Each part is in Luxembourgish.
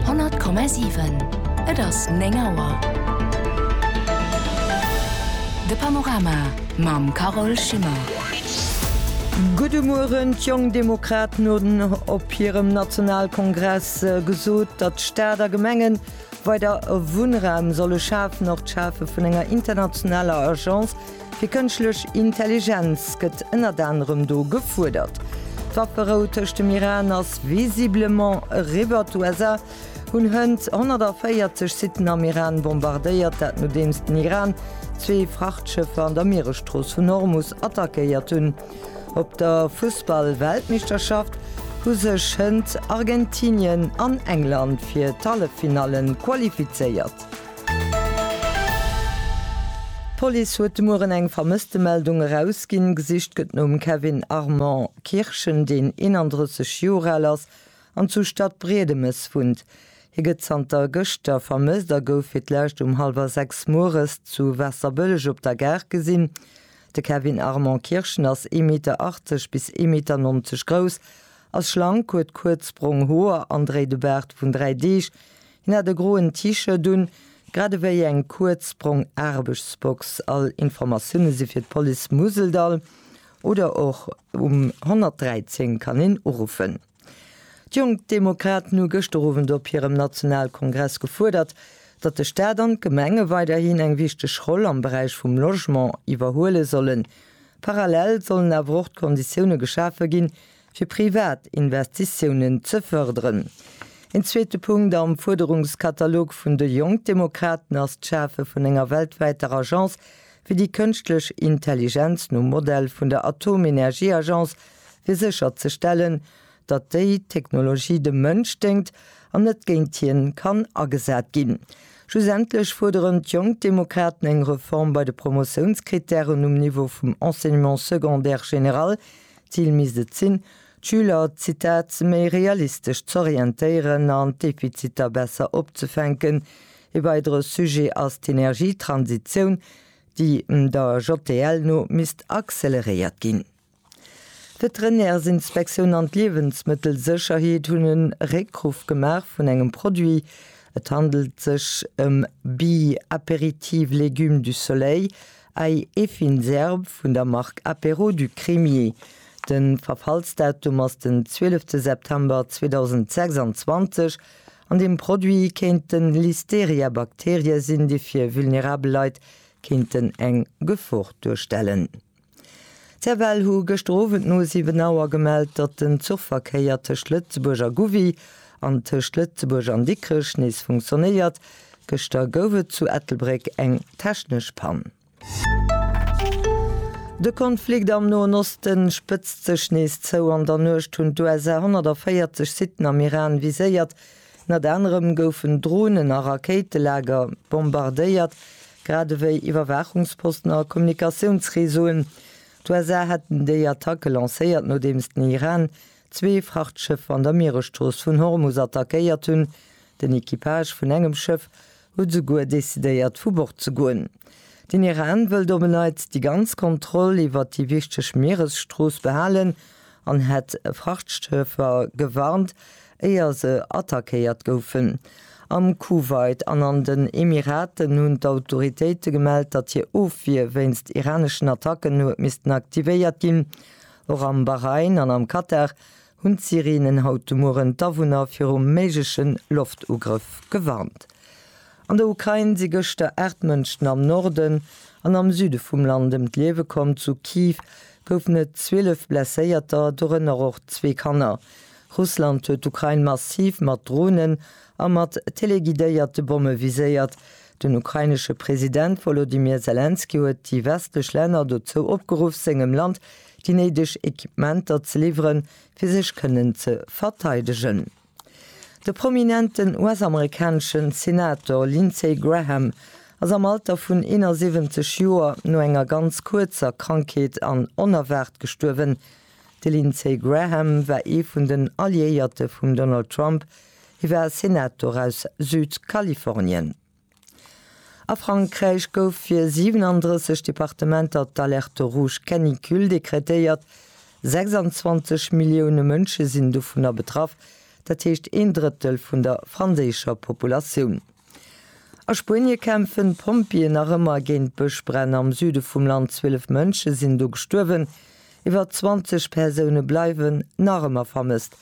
100,7 Et ass 9 Auer. De Panorama mam Carole Schimmer. Gudde Mueren. D'Jonk Demokraten hunn op hirem Nationalkongress gesot, datt Staat a Gemenge weider Wunnraum solle schafen. Och d'Schafe vun enger internationaler Agence Fir kënschtlech Intelligenz gëtt ënnert anerem do gefuerdert. D'Wafferou tëscht dem Iran ass visiblement eriwwer. D'USA hunn hënt 140 Sitten am Iran bombardéiert, dat nodeems den Iran zwee Frachtschëffer an der Mieresstrooss vun Hormus attackéiert hunn. Op der Fussball-Weltmeeschterschaft hu sech hënt Argentinien an England fir d'Halleffinallen qualifizéiert. D'Police huet de Mueren eng Vermësstemeldung erausginn. Gesicht gëtt nom Kevin Armand Kirchen, deen 31 Joer al ass an zu Stadbriedemes wunnt. Hie gëtt zanter gëschter vermësst a gouf fir d'lescht um hallwer 6 Mueres zu Waasserbëlleg op der Gare gesinn. De Kevin Armand Kirchen ass ee Meter 80 bis ee Meter 90 grouss, ass schlank, huet kuerz brong Hoer an dréit e Baart vun 3 Deeg. Hien hat e groen T-Shirt un, grad ewéi eng kuerz brong Aarbechtsbox. All Informatioune si fir d'Police Museldall oder och um 113 kann een uruffen. D'Jonk Demokraten hu gëschter Owend op hirem Nationalkongress gefuerdert, datt de Staat an d'Gemenge weiderhin eng wichteg Roll am Beräich vum Logement iwwerhuele sollen. Parallel sollen awer och d'Konditioune geschafe ginn, fir privat Investitiounen ze fërderen. Een zweete Punkt am Fuerderungskatalog vun de Jonkdemokraten ass d'Schafe vun enger weltwäiter Agence fir déi kënschtlech Intelligenz nom Modell vun der Atomenergieagence, fir sécherzestellen, datt déi Technologie dem Mënsch déngt an net géint hien kann agesat ginn. Schlussendlech fuerderen d'Jonkdemokraten eng Reform bei de Promotiounskrittären um Niveau vum Enseignement secondaire général, D'Zil misst et sinn, d'Schüler, Zitat, méi realistesch z'orientéieren an d'Defiziter besser opzefänken. E weidere Sujet ass d'Energietransitioun, déi der JTL no misst acceleréiert ginn. D'Veterinärsinspektioun an d'Liewensmëttelsécherheet hunn e Réckruff gemaach vun engem Produit. Et handelt sech ëm Bi-Apéritif Légumes du Soleil, Ai e fin Serb vun der Mark Apéro du Crémier. Den Verfallsdatum ass den 12 te September 2026 an den Produit kéinten Listeria Bakterien sin déi fir vulnerabel Leit kéinten eng Gefor duerstellen. D'Serval hu gëschter Owend no 7 Auer gemellt, datt den Zuchverkéier tëscht Lëtzebuerg a Gouvy an tëscht Lëtzebuerg an Dikrech nees funktionéiert. Gëschter gouf et zu Ettelbréck eng technesch Pann. De Konflikt am Noen Oste spëtzt sech nees zou. An der Nuecht hunn d'USA 140 Sitten am Iran viséiert. Ënnert anerem goufen Dronen a Rakéitelager bombardéiert. grad ewéi Iwwerwaachungsposten a Kommunikatiounsreseauen. D'USA hätten déi Attacke lancéiert, nodeems den Iran zwee Frachtschëffer an der Mieresstrooss vun Hormus attackéiert hunn. Den Equipage vun engem Schëff huet esouguer decidéiert, vu Bord ze goen. Den Iran wëllt op en Neits déi ganz Kontroll iwwert déi wichteg Mieresstrooss behalen an hätt Frachtschëffer gewarnt, éier se attackéiert goufen. Am Kuwait an an den Emiraten hunn d'Autoritéite gemellt, datt hir Ofwier wéinst iraneschen Attacken huet missten aktivéiert ginn. Och am Bahrain an am Katar hunn d'Sirenen haut de Mueren d'Awunner viru méigleche Loftugrëff gewarnt. An der Ukrain si gëschter 8 Mënschen am Norden an am Süde vum Land ëm d'Liewe komm. Zu Kiew goufen et 12 Blesséierter, dorënner och zwee Kanner. Russland huet d'Ukrain massiv mat Dronen a mat teleguidéierte Bomme viséiert. Den ukrainesche President Wolodymyr Selenskyj huet déi westlech Länner dozou opgeruff, sengem Land déi néideg Equipementer ze liwweren, fir sech kënnen ze verteidegen. De prominenten US-amerikanesche Senator Lindsey Graham ass am Alter vun 71 Joer no enger ganz kuerzer Krankheet an onerwaart gestuerwen. De Lindsey Graham war ee vun den Alliéierte vum Donald Trump, hie war Senator aus Südkalifornien. A Frankräich gouf fir 37 Departementer d'Alerte rouge canicule dekretéiert. 26 Millioune Mënsche sinn dovunner betraff, dat heescht een Drëttel vun der franséischer Populatioun. A Spuenie kämpfen d'Pompjeeë nach ëmmer géint Bëschbränn am Süde vum Land, 12 Mënsche sinn do gestuerwen. Iwwer 20 Persoune bleiwen nach ëmmer vermësst.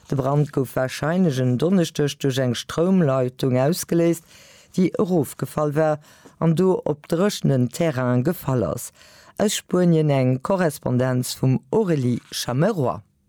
De Brand gouf warscheinlech en Donneschdeg duerch eng Stroumleitung ausgeléist, déi erofgefall war an do op dréchenen Terrain gefall ass. Aus Spuenien eng Korrespondenz vum Aurélie Chameroy.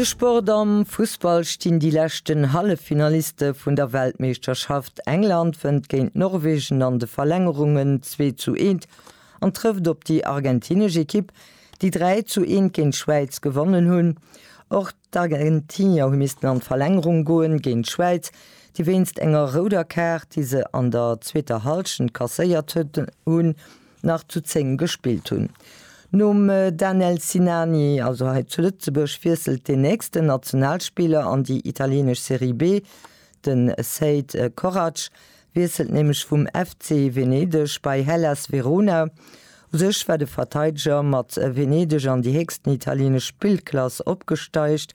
De Sport, Am Fussball stinn déi leschten Halleffinaliste vun der Weltmeeschterschaft. England wënnt géint Norwegen an de Verlängerungen 2 zu 1 an trëfft op déi argentinesch Ekipp, déi 3 zu 1 géint d'Schwäiz gewonnen hunn. Och. D'Argentinier hu missten an d'Verlängerung goen géint d'Schwäiz, déi wéinst enger rouder Kaart, déi se an der zweeter Hallschent kasséiert hunn, nach zu 10 gespillt hunn. Nom Danel Sinani, also hei zu Lëtzebuerg, wiesselt den nächsten Nationalspiller an déi italieenesch Serie B, de Seid Koracz. wiesselt nämlech vum FC Venedeg bei Hellas Verona. U sech war de Verteideger mat Venedeg an déi héchsten italienesch Spillklass opgesteigt,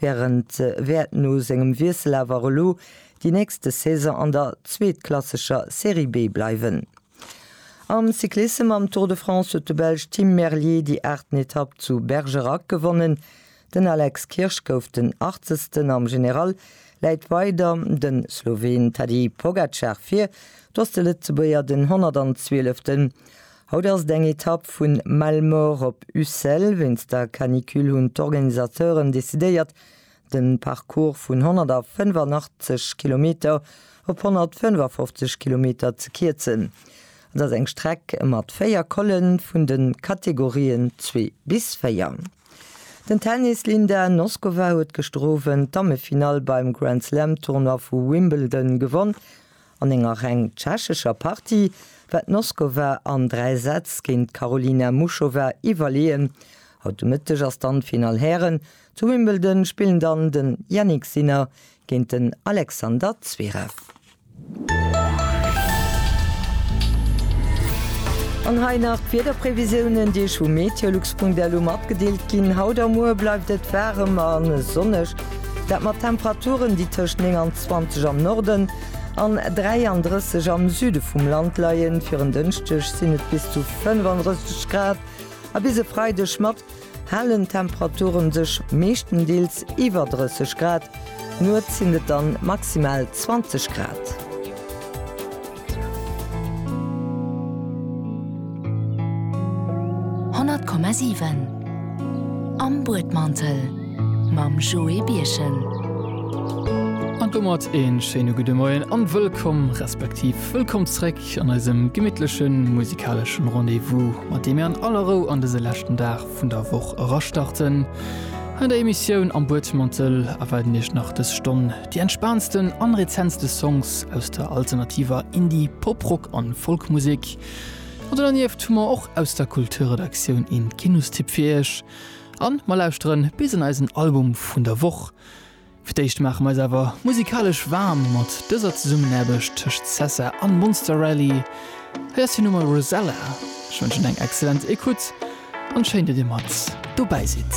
wärend wäert no sengem Wiessel awer elo déi nächste Saison an der zweetklassescher Serie B bleiwen. Am Cyclissem am Tour de France huet de Belsch Tim Merlier déi aachten Etapp zu Bergerac gewonnen. Den Alex Kirsch gouf den Achtzesten am General, läit weider de Sloween Tadej Pogacar vir, do ass de Lëtzebuerger den 112. Haut ass et eng Etapp vu Malemort op Ussel. Wéinst der Canicule hunn d'Organisateuren decidéiert, de Parcours vun 185 Kilometer op 155 Kilometer ze kierzen. Et ass eng Streck mat véier Colen vun de Kategorien zwee bis véier. Den Tennis, Linda Noskova huet gëschter Owend d'Dammefinall beim Grand Slam Tournoi vu Wimbledon gewonn. An enger reng tschechescher Partie war d'Noskova an 3 Sätz géint d'Karolina Muchova iwwerleeën. Haut de Mëtteg ass dann d'Finall Hären. Zu Wimbledon spillen dann den Jannik Sinner géint den Alexander Zverev. An hei nach d'Wiederprevisiounen, déi vu meteolux.lu matgedeelt ginn. Haut a muer bleift et waarem a sonneg, dat mat Temperaturen, déi tëscht 29 am Norden an 33 am Süde vum Land leien. Fir en Dënschdeg sinn et bis zu 35 Grad a bis e Freideg mat halen d'Temperature sech meeschtendeels iwwer 30 Grad, nuets sinn et dann maximal 20 Grad. Honnert Komma siwen Am Buedmantel mam Joé Birchen. An domat een schéine gudde Moien an wëllkomm, respektiv wëllkomm zréck. Musek an eisem gemittleche musikalesche Rendez-vous, mat deem mir an aller Rou an dëse leschten Dag vun der Woch erastarten. An der Emissioun am Buedmantel erwaarden Iech nach dës Stonn déi entspaantsten an rezentste Songs aus der alternativer Indie-, Pop-Rock an Folk-Musek. An do dernieft hu mer och aus der Kulturredaktioun een Kinostipp fir Iech. An mer lauschteren bis an eisen Album vun der Woch. Fir d'éischt maache mer eis awer musikalesch waarm mat dëser Zesummenaarbecht tëscht Sessa an Monster Rally. Hei ass hir Nummer Rosella. Ech wënschen eng excellent Ecoute an schéin, datt dir mat dobäi sidd.